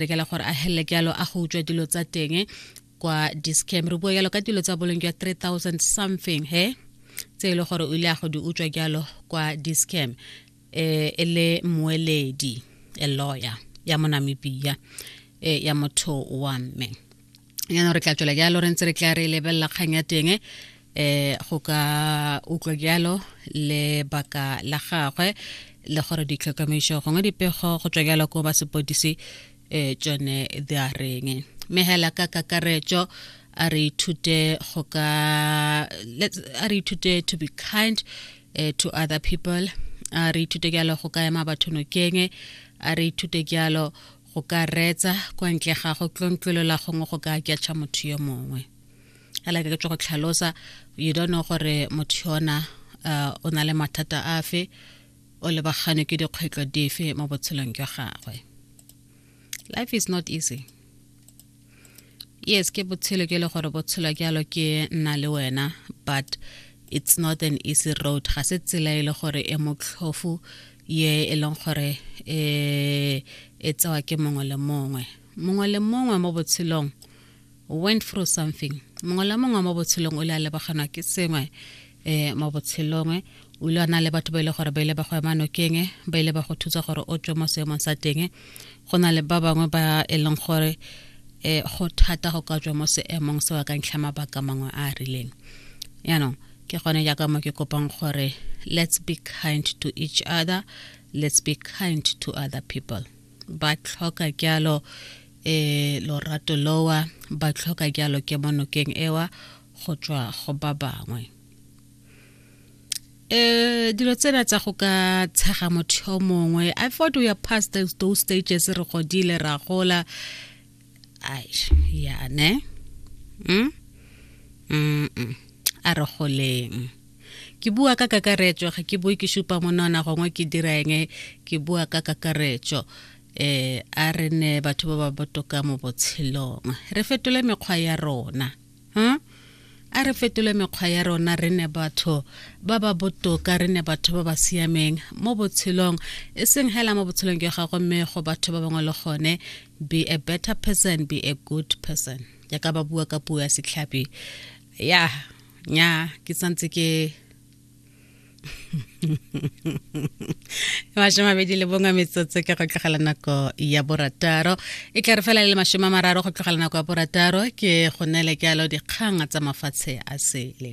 rekela gore a helele ke yalo a go utswa dilo tsa teng kwa discam re bua yalo ka dilo tsa boleng jwa 3000 something he tse e le gore o ile a go di utswa jalo kwa discam eh, e le moeledi a lawyer ya monamibia eh, ya motho wa mme yana re tla tswela jalo re ntse re tla re lebelela kgang ya teng eh go ka utlwa jalo le baka la gagwe le gore ditlhokomediso gongwe dipego go tswa jalo ko ba sepodisi um tsone di a reng mme hela ka kakaretso a re ithute go ka a re ithute to be kind uh, to other people a re ithute jalo go ka ema batho nokeng a re ithute jalo go ka reetsa kwa ntle ga go tlontlwelela gongwe go ka aketšha motho yo mongwe a leke ke tswa go tlhalosa you don't know gore motho yona uh, o na le mathata afe o lebagane ke dikgwetlho dife mo botshelong jwa gagwe life is not easy yes ke botshelo ke le gore botshelo jalo ke nna le wena but it's not an easy road ga se tsela e le gore e motlhofu ye e leng gore e e tsewa ke mongwe le mongwe mongwe le mongwe mo botshelong went through something mongwe le mongwe mo botshelong o le a lebaganwa ke sengwe e mo botshelong o ile wa na le batho ba ile gore ba ile ba go ema nokeng ba ile ba go thusa gore o tswe mo seemong sa teng go na le ba bangwe ba e leng gore um go thata go ka tswa mo seemong se wa ka ntlha mabaka mangwe a a rileng yaanong ke gone jaaka mo ke kopang gore let's be kind to each other let's be kind to other people ba tlhoka jalo um lorato lowa ba tlhoka jalo ke mo nokeng ewa go tswa go ba bangwe eh dilo tsena tsa go ka tshega motho yo mongwe i thought we are past those, those stages re godile ra gola ai ya ne mm? Mm -mm. a re goleng ke bua ka kakaretso ga ke bue ke supa monona gongwe ke dira eng ke bua ka kakaretso eh a re ne batho ba ba botoka mo botshelong re fetole mekgwa ya rona huh? a re fetole mekgwa ya rona re ne batho ba ba botoka re ne batho ba ba siameng mo botshelong e seng hela mo botshelong ke gago mme go batho ba bangwe le gone be a better person be a good person jaaka ba bua ka puo ya setlhapi ya nya ke santse ke mashome mabedi le bongwe metsotso ke go tlogela nako ya borataro e tla re fela le mashome a mararo go tlogela nako ya borataro ke go nele ke alo dikgang tsa mafatshe a sele